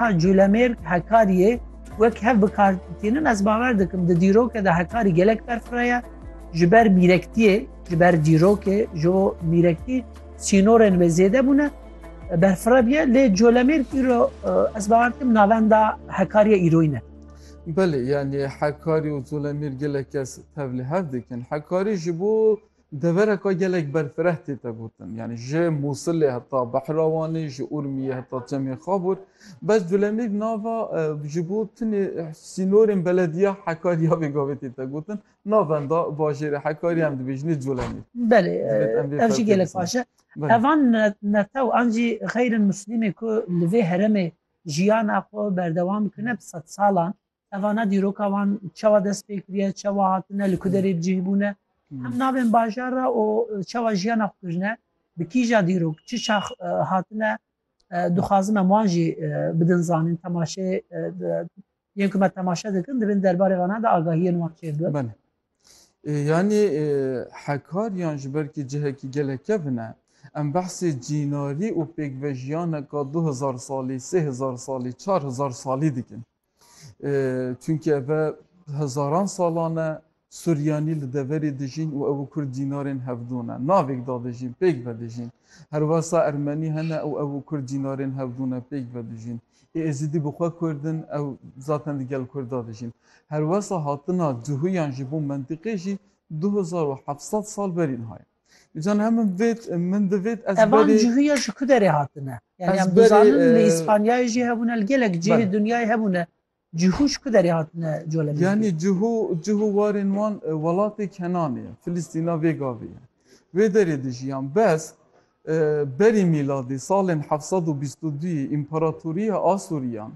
Ka Culemêrg Hekariyê wek hev bi kar tînin ez bawer dikim di dîroke de hekarî gelek berfireye ji ber mîrektiyê ji ber dîrokê ji bo mîrektî sînorên wê zêde bûne berfirebiye lê colemêr îro ez bawer dikim navenda hekariye îroyî ne Belê yani hekarî û colemêr gelek kes tevlî hev dikin hekarî ji bo Devereka gelek berfireh tê te gotin. Yanî ji Mûsilê heta Behrawanê, ji Urmiyê heta Çemê Xabûr. Bes Culemîr nava ji bo tunê sînorên belediya Hekarî ya vê gavê tê te gotin. Na venda bajêrê Hekarî em dibêjinê Culemîr. Belê, ev jî gelek baş e. Evan netew an jî xeyr in Muslîmê ku li vê heremê jiyana xwe berdewam bikine bi sedsalan Tevana dîroka wan çawa dest pê kiriye, çawa hatine, li ku derê cih bûne, hem navên bajar re û çawa jiyana xwe kirine, bi kîja dîrok, çi çax hatine, dixwazim em wan jî bidin zanîn, temaşeyê yên ku me temaşe dikin divên derbarê vanan de agahiyên wan çêr bibin. Yanî hekariyan ji ber ku cihekî gelek kevin e, em behsê cînarî û pêkvejiyane ka du hezar salî, sê hezar salî, çar hezar salî dikin. Çunke ev hezaran salan e Suryanî li deverê dijîn û ew û Kurd dînarên hevdû ne. Navêk da dijîn, pêk vedijîn. Herwesa Ermenî hene û ew û Kurd dînarên hevdû ne, pêk vedijîn. Ê Êzidî bi xwe Kurd in, ew zaten di gel Kurd da dijîn. Herwesa hatina duhuyan ji bo mentiqê jî du hezar û heft sed sal berî niha ye. Can hem min vêt min divêt ez Evan berê cihûya ji ku derê hatine? Yani Ez em berê, dizanin li e, Îspanyayê jî hebûne li gelek cihê Bel. dinyayê hebûne. Cihû ji ku derê hatine colemê? yanî cihû cihû warên wan e, welatê Kenanê ye. Filîstîna vê gavê ye. Wê derê dijiyan. Bes e, berî mîladê salên heft sed û bîst û duyê Împaratoriya Asûriyan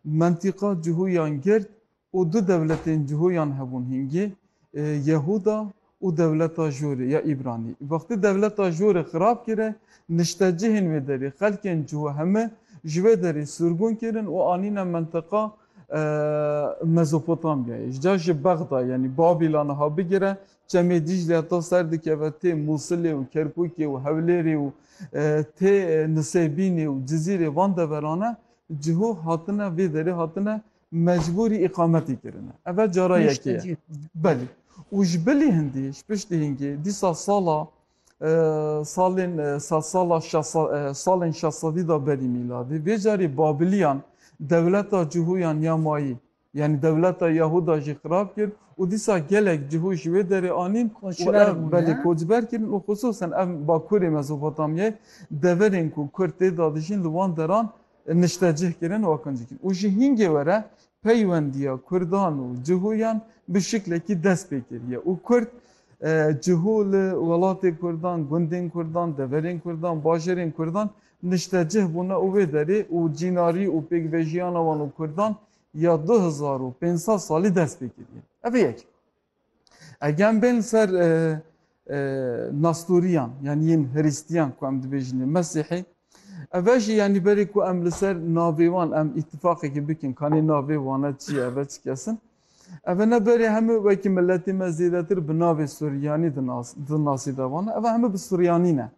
mentîqa cihûyan girt Û du dewletên cihûyan hebûn hingî, Yehûda û dewleta Jorê ya Îbranî. Wextî dewleta Jorê xirab kire, niştecihên wê derê, xelkên cihû heme ji wê derê sûrgûn kirin û anîne mintiqa Mezopotamyayê. Ji cihê Bexda yanî Babîla niha bigire, Çemê Dîcleya ta ser dikeve tê Mûsilê û Kerkûkê û Hewlêrê û tê Nisêbînê û Cizîrê van deverane cihû hatine vê derê hatine mecbûrî îqametê kirine. Ev e cara yekê ye. Belê. Û ji bilî hindî, ji piştî hingê dîsa sala salên sed sala salên şesedî de berî mîladê, vê carê Babiliyan dewleta Cihûyan ya mayî, yanî dewleta Yahuda jî xirab kir û dîsa gelek cihû ji wê derê anîn û ev belê koçber kirin û xisûsan ev bakurê Mezopotamyayê deverên ku kurd tê de dijîn li wan deran niştecih kirin û qencî kirin û ji hingê were peywendiya kurdan û cihûyan bi şiklekî dest pê kiriye û kurd cihû li welatên kurdan, gundên kurdan, deverên kurdan, bajarên kurdan niştecih bûne û wê derê û cînarî û pêkvejiyana wan û kurdan ya du hezar û pênc sed salî dest pê kiriye. Ev e yek. Egem bên li ser Nasturiyan yani yên Hristiyan ku em dibêjin ê Mesîhî eve jî yanî berê ku em li ser navê wan em îtîfaqekî bikin kanê navê wane çi ye eve çi kesin eve ne berê hemû wekî miletê me zêdetir bi navê Suryanî dinasî de wan eve hemû bi Suryanî ne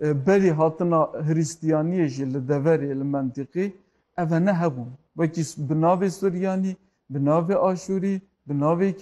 berî hatina Hristiyaniyê jî li deverê li mentîqî eve ne hebûn wekî bi navê Suryanî bi navê Aşûrî bi navê